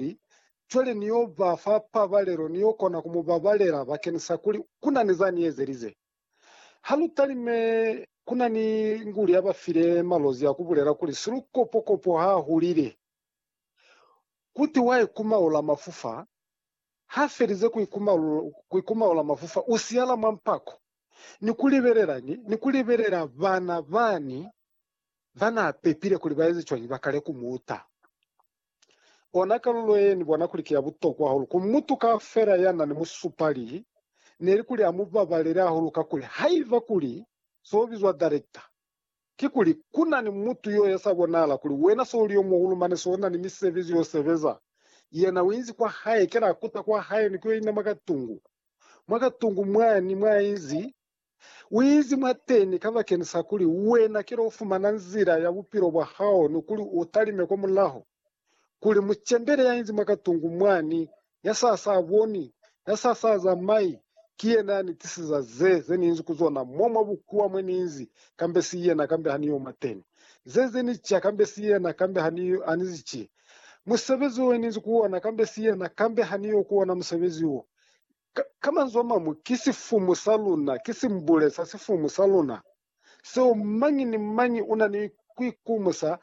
Ni cwale Ni yo ba fa pabalelo, Ni yo kona ku mu babalela bakeni sa kuli ku na ni za Ni ezelize. Ha lu talime, ku na ni nguli ya ba file malozi ya ku bulela kuli silukopokopo ha hulile. Kuti wa ikumaula mafufa, ha felize ku ikumaula mafufa, u siyala mwa mpako, ni ku libelela, ni ku libelela bana bani ba n'a pepile kuli ba eze cwañi ba kale ku mu uta. Ona kalulo ye ni bona kuli ki ya butokwa hahulu ku mutu kaufela ya na ni musupali, ne li kuli a mu babalele hahulu kakuli haiba kuli se u bizwa darekta, kikuli ku na ni mutu yo ya sa bonahala kuli wena se u li yo muhulu mane se u na ni misebezi yo sebeza, yena u inzi kwa hae, kela a kuta kwa hae ni ku yo inama ka tungu. Mwa ka tungu mwani mwa inzi Uizi mwateni kabakeni sa kuli wena kilo ufumana nzila ya bupilo bwa hao ni kuli utalime kwa mulaho, kuli mucembele yainzi mwa katungu mwani, ya sa sa boni, ya sa sa zamai, ki yena ya ni tisiza ze, ze niinzi ku zona mo mwa bukuwa mwe niinzi, kambe si yena, kambe ha ni yo mwateni. Ze, ze ni ca, kambe si yena, kambe ha ni, ha ni zi ci. Musebezi wo niinzi ku ona, kambe si yena, kambe ha ni yo ku ona musebezi wo. Ka, ka manzwi a mañwi, ki sifumu sa luna, ki simbule sa sifumu sa luna, seo mañi ni mañi una ni kuikumusa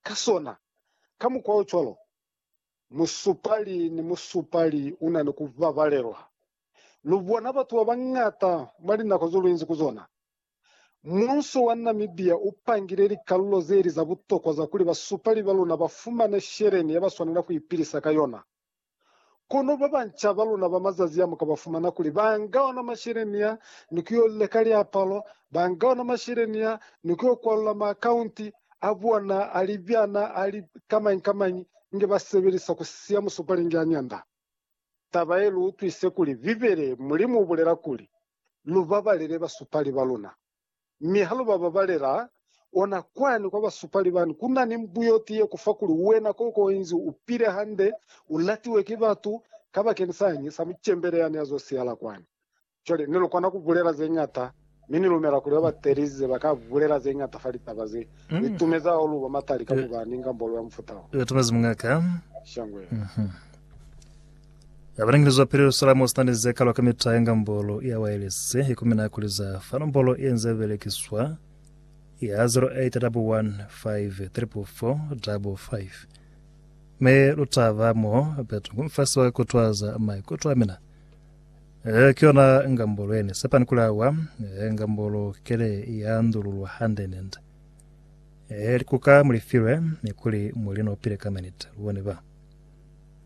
ka sona. Ka mukwa o cwalo, musupali ni musupali una ni kubabalelwa. Lu bona batu babañata mwa linako zo luinzi ku zona. Muuso wa Namibia u pangile likalulo zeli za butokwa za kuli basupali ba luna ba fumane sheleni yabaswanela kuipilisa ka yona. Kono babanca baluna ba mazazi a, mu ka ba fumana kuli ba nga ona masheleni a ni ku yo leka liapalo, ba nga ona masheleni a ni ku yo kwalula maakaunti a bona a libyana a li kamañi-kamañi inge ba sebelisa ku siya musupali inge a nyanda. Taba ye lu utwise kuli Bibele, Mulimu u bulela kuli, Lu babalele basupali ba luna. Mi ha lu ba babalela, ona kwani kwa basupali bani, ku na ni mbu yo tiye ku fa kuli wena koko inzi u pile hande, u latiwe ki batu, kabakeni sañi sa mucembele yani ya zo siyala kwani. Cwale, ni lu kona ku bulela ze ñata, mi ni lumela kuli ba ba telize ba ka bulela ze ñata fa litaba ze li tumeza hahulu ba matali ka ku ba ni ngambolo ya mufuta wo. Itumezi mungaka. Shangwe. Ya balangilizwa pili Lusalamo sina ni ze kalwa ka mita ya ngambolo ya waelesi ye kumina kuli za fa nombolo ye nze belekiswa ya 0811544455. Me lu ta ba mo betu ku mfasi wa kutwaza maikuto a mina. Eh, ki yona ngambolo ye ni sepani kuli awa, eh, ngambolo kele ya ndululwa hande nende. Eh, likuka mulifilwe ni kuli mulino pile ka manita. Lu bone ba.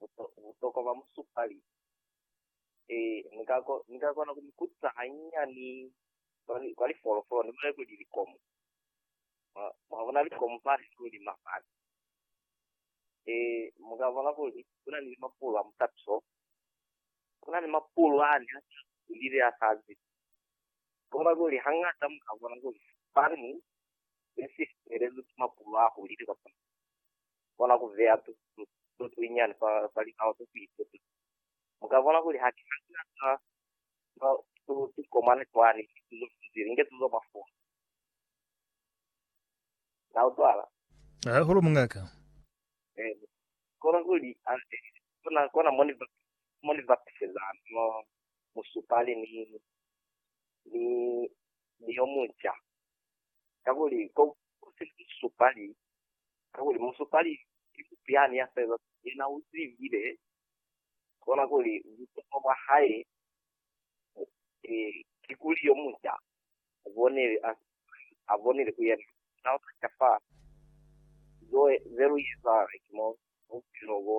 buto, butokwa bwa musupali. Ee, ni ka, ni ka kona ku mi kutisa hanyinyani kwa, kwa lifolofolo, ni bulele kuli likomu. Mwa, mwa bona likomu fani ni hulima fani. Ee, mu ka bona kuli kuna ni mapulu a mutatu so. Kuna ni mapulu ani a sa hulile a sa zibi. Kono kuli hangata mu ka bona kuli fani ne si felelwi ki mapulu a hulile kapa kona ku beya tuto tuli nyani fa, fa likao ze ku ituta. Mu ka bona kuli haki hande na sa ba tu, tu komana cwani ni tuto ze zili inge tuto mwa foni. Na utwala? Hahulu, mungaka. Eh, kona kuli, a, eh, kona, kona moni ba, moni ba piseza no musupali ni, ni, ni yo munca. kakuli ko si musupali, kakuli musupali ki mupyani ya fela, yena u zibile kona kuli butokwa bwa hae ki kuli yo muca a bonile, a bonile ku yena. Na u taca fa ze lu eza ki mo bupilo bo.